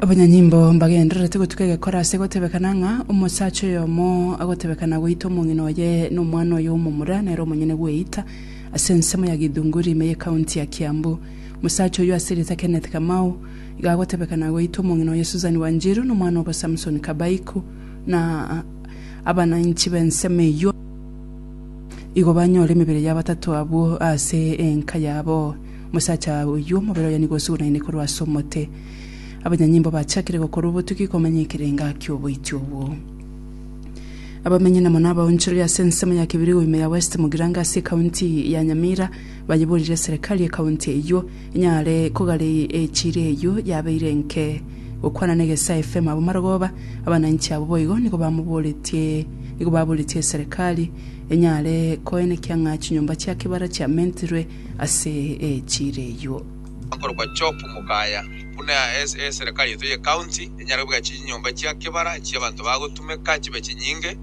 Abanyanyimbo mbagendererete gotuka egekora ase gotebekana ng'a omosacha oyomo agotebekana goita omong'ina oye na omwana oye omomura nere omonyene gweita ase ensemo ya Githunguri ime ye county ya Kiambu. Omosacha oyio ase rieta Kenneth Kamau iga agotebekana goita omong'ina oye Susan Wanjiru na omwana obo Samson Kabaiku na abananchi b'ensemo eyio igo banyore emebere ya batato abwo ase enka yabo. Omosacha oyio omobere oye nigo osugunaine korwa ase omote. Abanyanyimbo bachakire gokorwa obotugi komanya ekerenga ki'oboiti obwo. Abamenyi na mono abaonchoria ase ensemo ya Kibirigo ime ya West Mugirango ase ekaunti ya Nyamira bayeborire serikali y'ekaunti eyio enyare kogare echiri eyio yabeire enke. Gokwana na Egesae FM abwo Marogoba, abananchi abwo boigo nigo bamoboretie nigo baboretie serikali enyare koenekia ng'a chinyomba chia kibara chiamentirwe ase echira eyio. Akorokwa Job Mukaya buna ase eserekari yaito ye county enyare kobeka chinyomba chia kebara chia abanto bagotumeka chibe chinyinge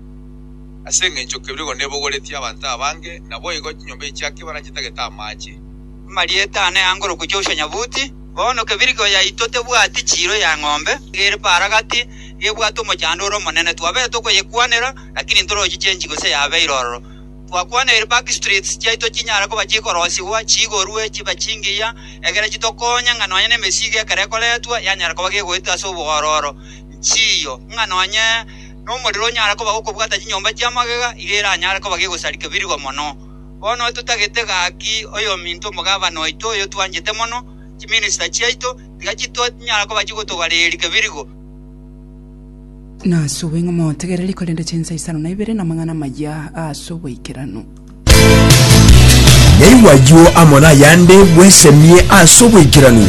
ase engencho kebirigo nebogoretie abanto abange naboigo chinyomba echi chia kebara chitagete amache. Amarieta ane angorokwe Joshua Nyabuti. Bono kebirigo yaito tebwati chiiro ya ng'ombe ere paara gati gebwate omochandore omonene twabete tokoyekwanera lakini ntorochiche enchigo se yabeire ororo. Twakwaneire backstreets chiaito chinyare koba chikorosigwa, chiigorwe, chibe chingiya, egere chitokonye ng'a nonya nemesigo ekero ekoretwa yanyara koba gegoetwa ase oboororo. Nchiyo, ng'a nonya nomorero onyare koba gokobwata chinyomba chia magega, iga eranyare koba gegosarika birigo mono. Bono totagete gaki oyominto omogabana oito oyo twanchete mono, chiminister chiaito, tiga chito tinyara koba chigotogareria birigo. Nasube ng'a motegereri korende chinsa isano na ibere namang'ana amaya ase oboikeranu. Naigwa ayio amo nayande bwesemie ase oboikeranu.